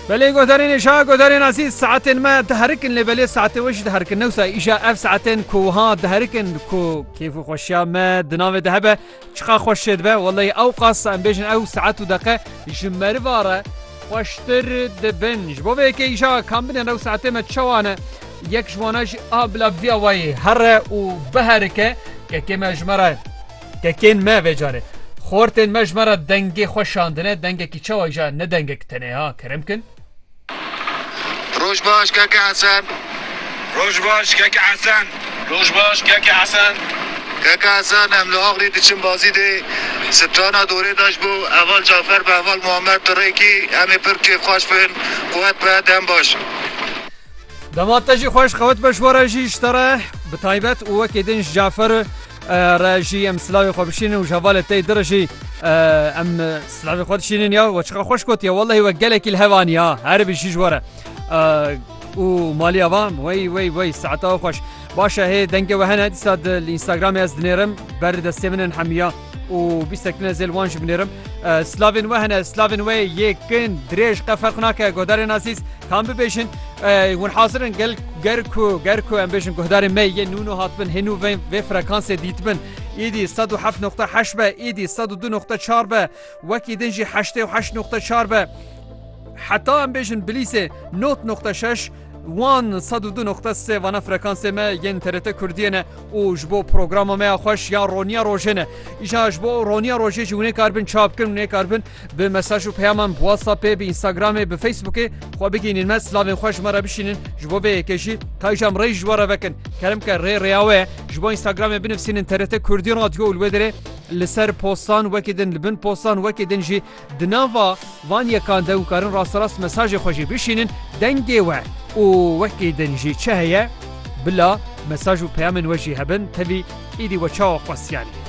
Belê godarên êşa godarên asî saetên me diherikin lê belê saetê we jî diherikin newsa îşa ev saetên ku wiha diherikin ku kêf û xweşiya me di navê de hebe çiqa xweş şê dibe weleyî ew qas em bêjin ew saet û deqe ji meriva re xweştir dibin ji bo vê yekê îşa kam bidên ew saetê me çawa ne yek ji wana jî a bila viya wayê here û biherike yekê me ji me re Kekên me vê carê. Xortên me ji me re dengê xwe şandine, dengekî çawa îja ne dengek tenê ha, kerem kin. Roj baş keke Hesen. Roj baş keke Hesen. Roj baş keke Hesen. Keke Hesen em li Axlî diçin bazî dê strana dorê de ji bo heval Cafer bi heval Muhammed tu rê kî em ê pir kêfxweş bin quwet be dem baş. Dema te jî xweş qewet be ji we re jî ji te re bi taybet û wekî din ji Cafer. Re jî em silavê xwe bişînin û ji hevalê tey dir jî em silavê xwe dişînin ya we çiqa xweş gotiye wellehî we gelekî li hev aniye ha herî bi jî ji were û maliya van wey wey wey saeta we xweş başe hê dengê we hene dîsa di li Instagramê ez dinêrim ber destê min in hemiya û bîstek din ez ê li wan jî binêrim silavên we hene silavên we yê kin dirêj qe ferq nake godarên azîz Tam bibêjin hûn hazir in gel ger ku ger ku em bêjin guhdarên me yên nûno hatibin hênû vê vê frekansê dîtibin îdî sed û heft noqta heşt be îdî sed û du noqta çar be wekî din jî heştê û heşt noqta çar be heta em bêjin bilîsê not noqta şeş wan sed û du noqta sê vana frekansê me yên TRT Kurdiyê ne û ji bo programa me ya xweş ya roniya rojê ne îja ji bo roniya rojê jî hûnê kar bin çap kirin hûnê kar bin Bi mesaj û peyaman bi WhatsAppê, bi Instagramê, bi Facebookê xwe bigihînîn me, silavên xwe ji me re bişînin, ji bo vê yekê jî Kayjam rê ji we re vekin. Keremke rê rêya we ye. Ji bo Instagramê binivîsînin TRT Kurdî Radio û li wê derê li ser postan wekî din, li bin postan wekî din jî di nava van yekan de û karin rasterast mesajê xwe jî bişînin dengê we û wekî din jî çi heye bila mesaj û peyamên we jî hebin tevî êdî we çawa xwestiyanî.